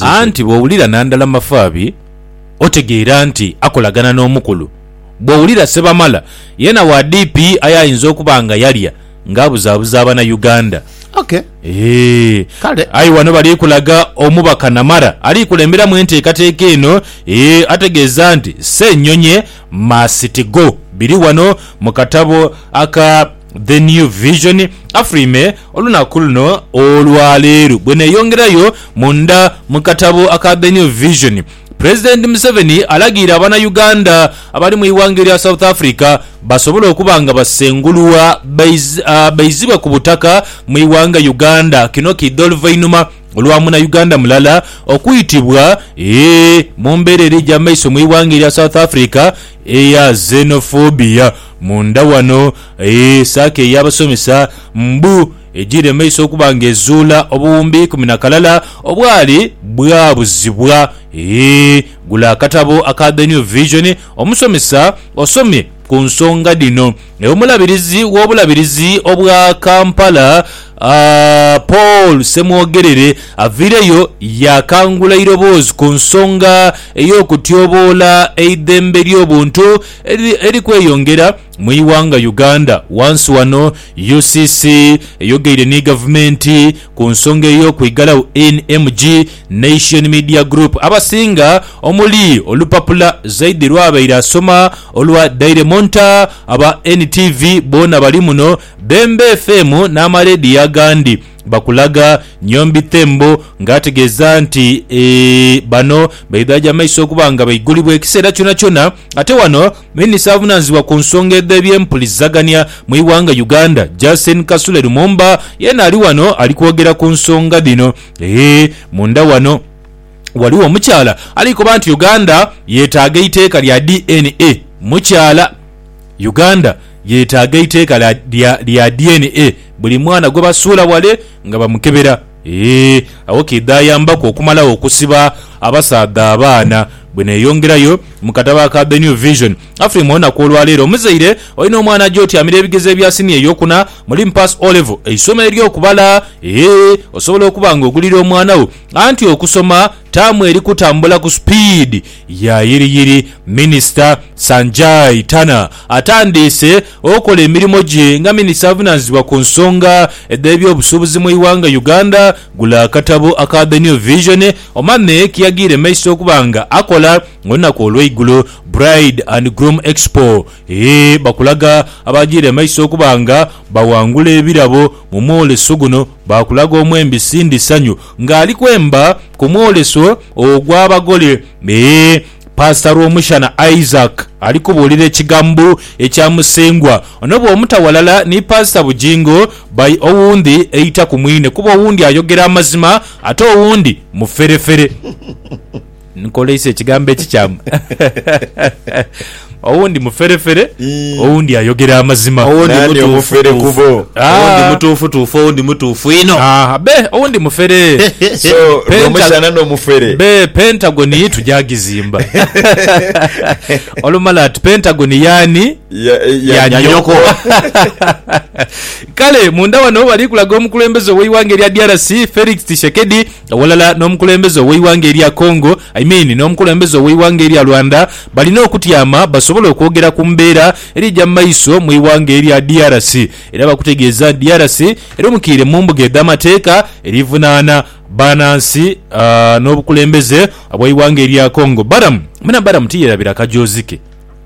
Anti bw'owulira na ndala Mafaabi, otegeera nti akolagana n'omukulu. Bw'owulira Sebamala, yeena wa DP aye ayinza okuba nga yalya ng'abuzaabuza Abanauganda. Eeh. Aye wano bali kulaga omubaka Namara ali kulemberamu enteekateeka eno eeh ategeeza nti Ssenyonyi must go. Biri wano mu katabo aka. The New Vision, Afulwime olunaku luno olwaleero bweneyongerayo munda mu katabo aka The New Vision, Pulezidenti Museveni alagiire abana Uganda abali mu ighanga erya South Africa basobole okuba nga basengulwa baizibwe ku butaka mu ighanga Uganda. Kino kiidha oluvainhuma olwa muna Uganda mulala okwitibwa mu mbeera eri eja maiso mu ighanga erya South Africa eya Xenophobia. Munda wano saako ey'abasomesa mbu ejiire mu maiso okuba nga ezuula obuwumbi ikumi na kalala obwali bwabuzibwa. Gula akatabo aka The New Vision omusomesa osome ku nsonga dhino. Omulabirizi w'obulabirizi obwa Kampala, Paul Ssemwogerere aviireyo yaakangula eiroboozi ku nsonga ey'okutyoboola eidhembe ly'obuntu, eri kweyongera mu ighanga Uganda. Wansi wano UCC eyogeire ni gavumenti ku nsonga ey'okwigalau NMG, Nation Media Group, abasinga omuli olupapula Zaidi lwabaire asoma olwa Daily Monitor, aba NTV boona bali muno, Bemba FM n'amalediyo agandi. bakulaga Nyombi Thembo nga ategeeza nti bano baidhajo amaiso okuba nga baigulibwa ekiseera kyonakyona ate wano Minisita avunanizibwa ku nsonga edh'ebyempulizagania mu ighanga Uganda Justin Kasule Lumumba yeena ali wano ali kwogera ku nsonga dhino. Munda wano waliwo omukyala ali koba nti Uganda yetaaga eiteeka lya DNA mukyala. Uganda yetaaga eiteeka lya DNA buli mwana gwebasuula wale nga bamukebera eeh agho kiidhayambaku okumalagho okusiba abasaadha abaana. Bweneyongerayo mu katabo aka The New Vision Afrima olunaku olwaleero omuzaire olina omwana aja otyamira ebigezo ebya siniya eyokuna mulimu pass O'level eisomo eryokubala eeh osobola okuba nga ogulira omwana wo anti okusoma taamu eri kutambula ku supiidi Yayiriyiri Minisita Sanjay Tanna atandiise okola emirimo gye nga Minisita avunanizibwa ku nsonga edh'ebyobusuubuzi mu ighanga Uganda gula akatabo aka The New Vision Omame keyagire maiso okuba nga akola olunaku olweigulo Bride and Groom Expo e bakulaga abagire maiso okuba nga bawangula ebirabo mu mwoleso guno bakulaga omwembi Cindy Sanyu Ng'ali kwemba ku mwoleso ogw'abagole, ee, Paasita Rwomushana Isaac ali kubuulira ekigambo ekya Musengwa. Ono bw'omuta ghalala ni Paasita Bugingo, by owundi eita ku mwine kuba owundi ayogera amazima ate owundi muferefere. Nkoleisa ekigambo ekikyamu. Owundi muferefere, Ii. owundi ayogera amazima. Owundi Nani mutuufu omufere tuufu. kubo? Ah, Owundi mutuufu tuufu, owundi mutuufu inho. ah, be owundi mufere. So Penta- lwomukyana nomufere. Be Pentagon tujagizimba. Olumala ati Pentagon yani Ya- ya- ya nyoko. Kale munda wano bali kulaga omukulembeze oweighanga erya DRC Felix Tshisekedi aghalala n'omukulembeze ow'eighanga erya Congo I mean n'omukulembeze ow'eighanga erya Rwanda balina okutyama basobole okwogera ku mbeera eri eja mu maiso mu ighanga erya DRC era bakutegeeza nti DRC erumikiire mu mbuga edh'amateeka erivunaana banansi n'obukulembeze obw'eighanga erya Congo. Balamu, mwena Balamu tiyerabira kajoozi ke.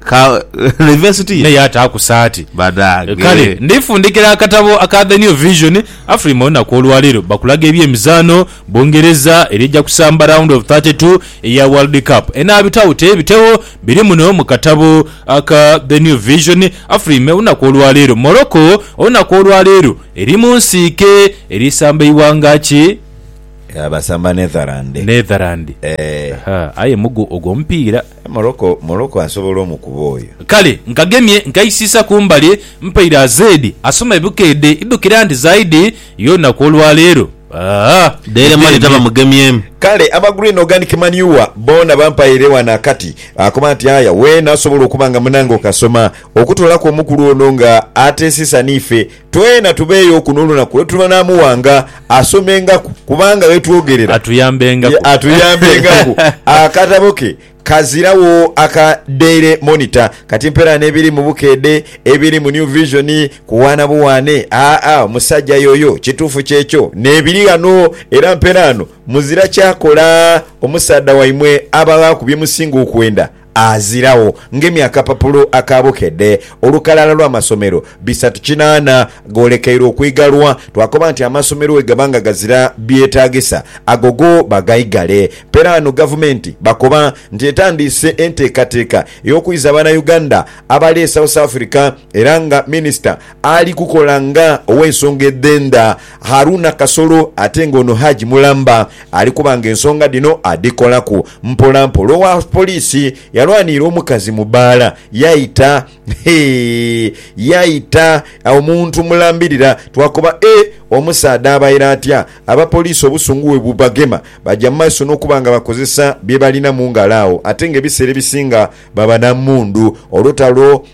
Ka, ne vesiti ye. Naye ataaku saati. Banange. Kale, ndifundikira akatabo aka The New Vision, Afrima olunaku olwaleero bakulaga eby'emizaano Bungereza eri eja kusamba round of thirty two eya World Cup. Enaabitagho teebitegho, biri muno mu katabo aka The New Vision, Afrima olunaku olwaleero, Morocco olunaku olwaleero eri mu nsiike eri samba ighanga ki? Basamba Netherland. Netherland. Eeh. Ahaa, aye mugu ogwo omupiira. Morocco Morocco asobola omukuba oyo. Kale nkagemye nkaisiisa kumbali mpaire azeedi asoma ebukeedhe idhukira nti zaidi yoonaku olwaleero aah dheere male taba mugemyemu. Kale aba Green Organic Manure boona bampaire wano akati akoba nti aya weena asobola okuba nga munange okasoma okutoolaku omukulu ono nga ateesisa niife Twena tubeeyo kuno olunaku lwe tuliba naamuwanga, asomengaku, kubanga yetwogerera, ye atuyambengaku, akatabo ke kaziragho aka Daily Monitor. Kati mpera n'ebiri mu Bukeedhe, ebiri mu New Vision, kuwaana buwaane, aa, musajja yoyo, kituufu kyekyo, n'ebiri ghano. Era mperaano muzira kyakola omusaadha waimwe aba aghaku bye musinga okwenda. aziragho ngemye akapapulo aka bukedhe olukalala lw'amasomero bisatu kinaana goolekeire okwigalwa. Twakoba nti amasomero bwegaba nga gazira byetaagisa ago go bagaigale. Peraano gavumenti bakoba nti etandiise enteekateeka ey'okwiza Banauganda abali e South Africa era nga minisita ali kukola nga ow'ensonga edh'endha Haruna Kasolo ate nga ono Hajj mulamba ali kuba nga ensonga dhino adhikolaku mpola mpola. Owa poliisi yalwaniire omukazi mu bbaala yaita hee yaita omuntu mulambirira twakoba ee omusaadha abaire atya? Abapoliisi obusungu bwe bubagema baja mu maiso n'okuba nga bakozesa bye balina mu ngalo agho ate nga ebiseera ebisinga baba na mmundu olutalo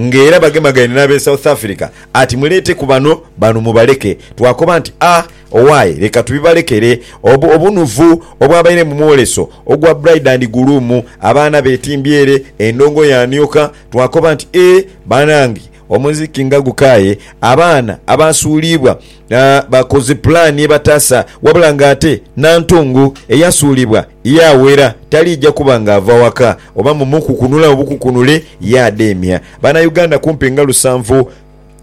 Nga era bagemagaine n'ab'e South Africa ati, Muleeteku bano, bano mubaleke. Twakoba nti, A, owaye, leka tubibalekere. Obu, obunuvu obwabaire mu mwoleso ogwa bride and groom, abaana betimbye ere, endongo yaanioka. Twakoba nti, A, banange, omuziki nga gukaaye, abaana abaasuuliibwa bakoze pulaani ebataasa, wabula ng'ate Nantongo eyasuulibwa Yaawera, taliija kuba nga ava waka oba mu mukukunula obukukunule yaadeemya. Banauganda kumpi nga lusanvu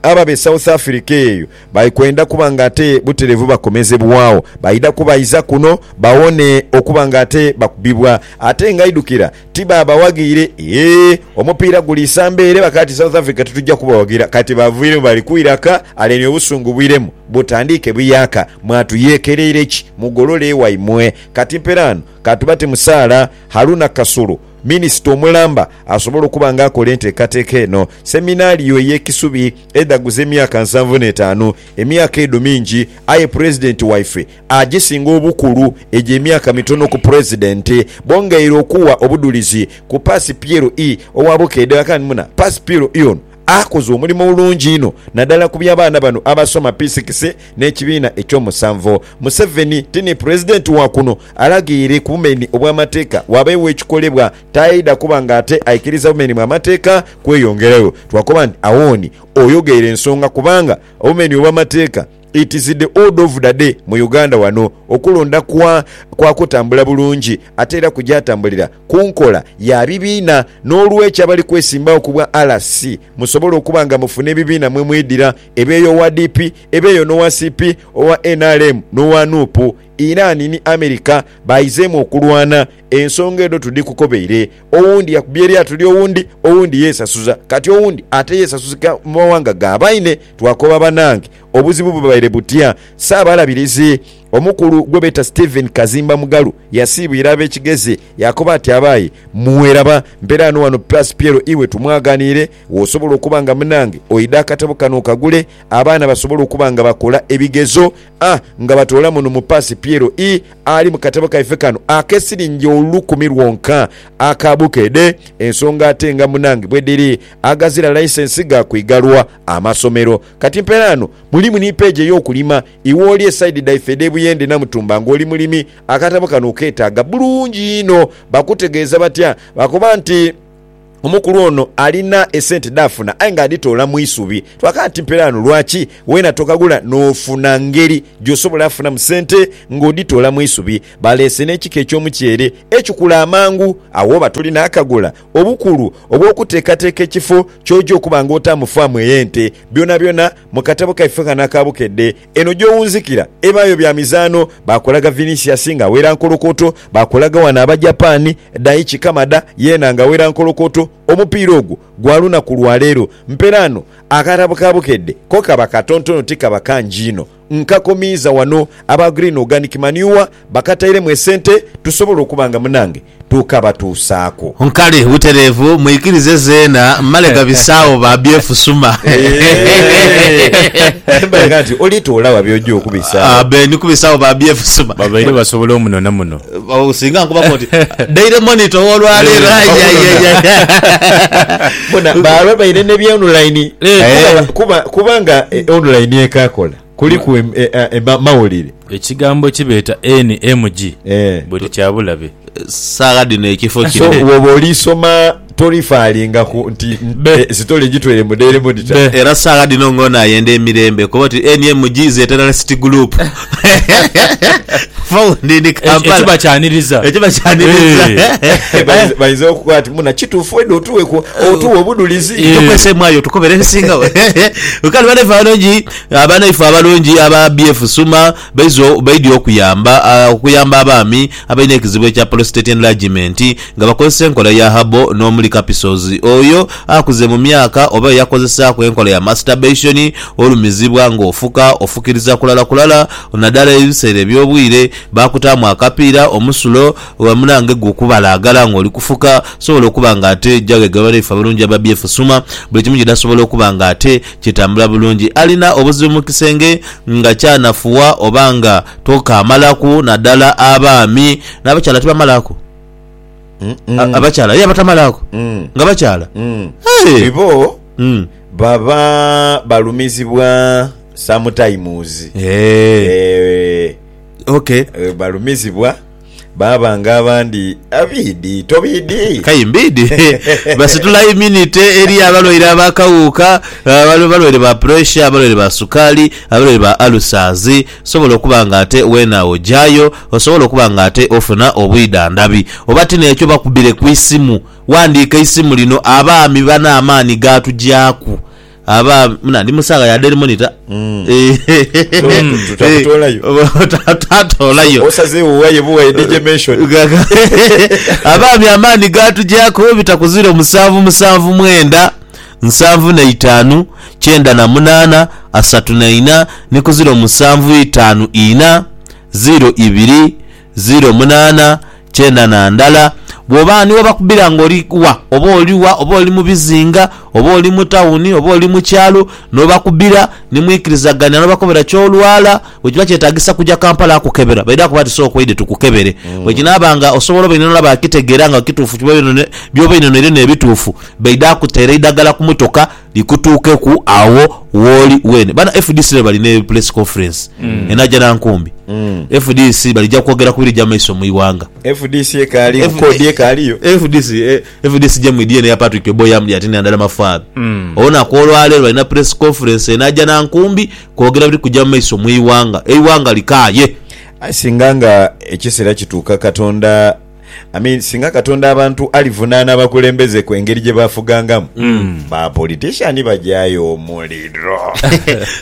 ababa e South Africa eyo bali kwenda kuba nga ate butereevu bakomezebwagho baidha kubaiza kuno bawone okuba nga ate bakubibwa ate nga idhukira tibaabawaghiire eeh omupiira guli isamba ere bakaba ti South Africa titujja kubawagira kati baviiremu bali kwira ka aleni obusungu bwiremu butandiike buyaaka mwatuyeekereire ki mugolole ewaimwe Kati mperaano ka tubate mu saala. Haruna Kasulu, Minisita omulamba asobola okuba nga akola enteekateeka eno. Seminario ey'e Kisubi edhaguza emyaka nsanvu n'etaanu. Emyaka edho mingi, aye Pulezidenti waife agisinga obukulu egyo emyaka mitono ku Pulezidenti. Bongeire okuwa obudhulizi ku Paasi Piero ii owa Bukedea. Kani muna Paasi Piero ii ono Akoze omulimo mulungi inho nadala ku by'abaana bano abasoma piisikisi n'ekibiina eky'omusanvu. Museveni ti ni Pulezidenti wa kuno, alagheire ku bumeni obw'amateeka wabeewo ekikolebwa. Taidha kuba nga ate aikiriza bumeni bwa mateeka kweyongerayo. Twakoba nti Awoni oyogheire ensonga kubanga obumeni obw'amateeka. It is the ood of the day mu Uganda wano okulonda kwa kwa kutambula bulungi ate era kugyatambulira ku nkola ya bibiina n'olwekyo abali kwesimbawo ku bwa LC musobola okuba nga mufuna ebibiina mwe mwidira ebeeyo owa DP ebeeyo n'owa CP owa nrm n'owa Nup Iran ni America baizeemu okulwana Ensonga edho tudhikukobeire. Owundi yakubye eryato lya owundi, owundi yeesasuza, kati owundi ate yeesasuzika mu mawanga ga baine. Twakoba banange, obuzibu bubaire butya? Ssaabalabirizi omukulu gwe beeta Stephen Kazimba Mugalu yasiibwira ab'ekigezi yaakoba ati, Abaayi mmwe laba mperaano wano Pass Piero iwe tumwaganiire w'osobola okuba nga munange oidha akatabo kano okagule abaana basobole okuba nga bakola ebigezo a nga batoola muno mu Pass Piero ii ali mu katabo kaife kano ak'esilingi olukumi lwonka aka Bukedhe, ensonga ate nga munange bwedhiri agazira laisensi ga kwigalwa amasomero. Kati mperaano mulimu ni peegi ey'okulima. Iwe oli e saidi dhaife edh'e Buyende Namutumba ng'oli mulimi, akatabo kano okeetaaga bulungi inho. Bakutegeeza batya? Bakoba nti. Omukulu ono alina esente dhafuna aye nga adhitoola mu isubi. Twakala timperaano lwaki weena tokagula n'ofuna ngeri gy'osobola afunamu sente ng'odhitoola mu isubi. Baleese n'ekika eky'omuceere ekikula amangu agho oba toli naakagula. Obukulu obw'okuteekateeka ekifo ky'oja okuba ng'otaamu faamu ey'ente. Byonabyona mu katabo kaife ghano aka Bukedde. Eno gy'owunzikira ebaayo bya mizaanho, baakolaga Vinicius ng'awera nkolokoto, baakolaga ghano Abajapani, Daichi Kamada yeena ng'awera nkolokoto. Omupiira ogwo gwa lunaku lwa leero. Mperaano, akatabo ka Bukedde ko kaba katontono tikaba kangi inho. Nkakomiiza wano. Aba Green Organic Manure bakatairemu esente tusobola okuba nga munange tukabatuusaaku. Nkali butereevu mwikirize zeena mmale gabisaagho ba byefusuma. Embaga nti oli toola wa by'oja okubisaagho. Be ni kubisaagho ba byefusuma. Babaire basobola omunona muno. Singa nkubako nti Daily Monitor ow'olwaleero aiyaiyaiyai. Bona baalwa baire ne bya online kuba nga online ekaakola. Kuliku em, e, a, e, ma, mawulire. Ekigambo ki beeta NMG Ee. buli kya bulabe. Saagha dhino ekifo So, kino. bwoba oli soma torifaalinga ku nti Be. e, sitole egitweire mu Daily Monitor. Be. Era saagha dhino nga ono ayenda emirembe kuba oti NMG is a terrorist group. Founded in Eki- Kampala. Ekiba kyaniriza. Ekiba kyaniriza. Eh. Bayinza- Bayinza okukoba ati muna kituufu wedde otuwe ku- otuwe obudulizi. Eh. Tukwese mwayo tukobere ebisingawo. Kale bane fano nji Banaife abalungi aba BF Suma baize baidhi okuyamba okuyamba abaami abalina ekizibu ekya Prostate Enlargement nga bakozesa enkola ya Herbal n'omuli Capsules. Oyo akuze mu myaka oba eyakozesaaku enkola ya Masturbation olumizibwa nga ofuka ofukiriza kulala kulala nadala ebiseera eby'obwire baakutaamu akapiira omusulo munange gukubalaagala nga oli kufuka sobola okuba nga ate jaghe banaife abalungi aba BF Suma buli kimu gyedasobola okuba nga ate Kitambula bulungi. Alina obuzibu mu kisenge nga kyanafuwa oba nga tokaamalaku naddala abaami. N'abakyala tibamalaaku. A, abakyala, yee, abatamalaaku. Nga bakyala. Hee! Ibo baba balumizibwa sometimes. Eeh. Eeh. Okay. Balumizibwa. Baaba nga abandi abiidhi tobiidhi? Kayi mbiidhi. Basitula iminite eri abalwaire ab'akawuuka, abalwaire ba puresha, abalwaire ba sukaali, abalwaire ba alusaazi. Sobola okuba nga ate weena ojayo, osobola okuba nga ate ofuna obwidhandhabi. Oba ti n'ekyo bakubire ku isimu. Wandiika isimu lino, abaami bano amaani gaatugyaku. aba muna ndi musaagha ya daily monitor Mm. Eh, Tu- tu- takutolayo. Ta- tatolayo Osazeewo waye buwaye DJ mention. Gaga. abaami amaani gaatugyako bitakuzira omusanvu musanvu mwenda nsanvu na itaanu kyenda na munaana asatu na ina ni kuzira omusanvu itaanu ina ziro ibiri Ziro munaana kyenda na ndala. Bw'oba ni webakubira nga oli wa, oba oli wa, oba oli mu bizinga, oba oli mu tawuni, oba oli mu kyalo, n'obakubira ni mwikirizagania n'obakobera ky'olwala, bwe kiba kyetaagisa kuja Kampala kukebera, baidha kuba bati sooka oidhe tukukebere. Bwe kinaaba nga osobola oba inhonho baakitegeera nga kituufu by'oba oinhonheire n'ebituufu, baidha kuteera eidagala ku motoka likutuukeku agho wooli weene. Bano fdc leero bali ne press conference enaja na nkumbi. Fdc balija kwogera ku birija mu maiso mu ighanga. Fdc ekaaliyo, F- kkoodi ekaaliyo. FDC eh, FDC gye mwidhie n'eya Patrick Oboi yamulya ati nandala mafaabi. Olunaku olwaleero balina press conference enaja na nkumbi kwogera biri kuja mu maiso mu ighanga. Eighanga likaaye. Aye singa nga ekiseera kituuka Katonda I mean singa katonda abantu alivunaana abakulembeze ku engeri gyebafugangamu ba politician bajayo omuliro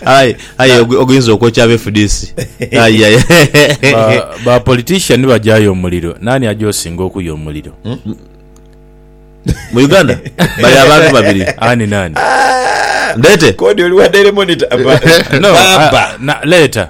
Aye aye ogu- oguyinza okwokya abe fdc. Aye aye. Ba- ba politician bajayo omuliro nani aja osinga okuya omuliro Mu Uganda bali abantu babiri. ani nani Ndete. kodi oli wa daily monitor Ba- no baba ah, na, leeta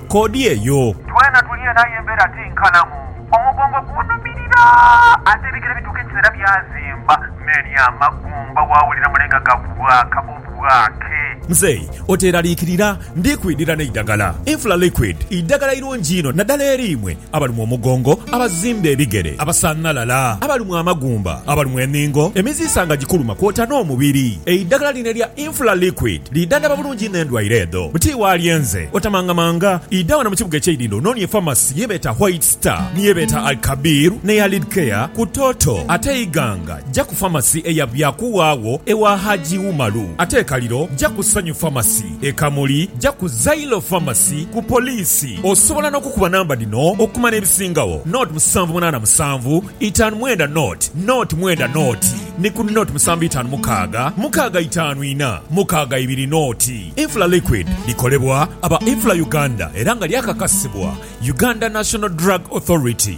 koodi eyo. Twena tuli eno aye embeera ti nkalamu. Omugongo gunhumirira ate ebigere bituuka ekiseera byazimba n'eri amagumba waawulira mulenga gabwaaka obwaake. Mzeei oteeraliikirira, ndi kwidhira n'eidagala. Infla Liquid idagala irungi inho naddala eri imwe abalumwa omugongo, abazimba ebigere, abasanhalala, abalumwa amagumba, abalumwa enhingo, emiziisa nga gikuluma kwota n'omubiri. Eidhagala lino elya Infla Liquid lidhandhaba bulungi inho endwaire edho. Buti waalyenze, otamangamanga, idha wano mu kibuga eky'eidhindho ononie famasi ye beeta White Star, ni ye beeta Al-Kabir n'eya Lidcare ku Toto. Ate Iganga, ja ku famasi eya Byakuwawo ewa Haji Umaru. Ate e Kaliro, ja ku Sanyu Famasi. e Kamuli, ja ku Zailo Pharmacy ku poliisi. Osobola n'okukuba namba dhino okumanya ebisingagho, nought musanvu munaana musanvu itaanu mwenda nought nought mwenda nought ni ku nought musanvu itaanu mukaaga mukaaga itaanu ina mukaaga ibiri nought. Infla Liquid likolebwa aba Infla Uganda era nga lyakakasibwa Uganda National Drug Authority.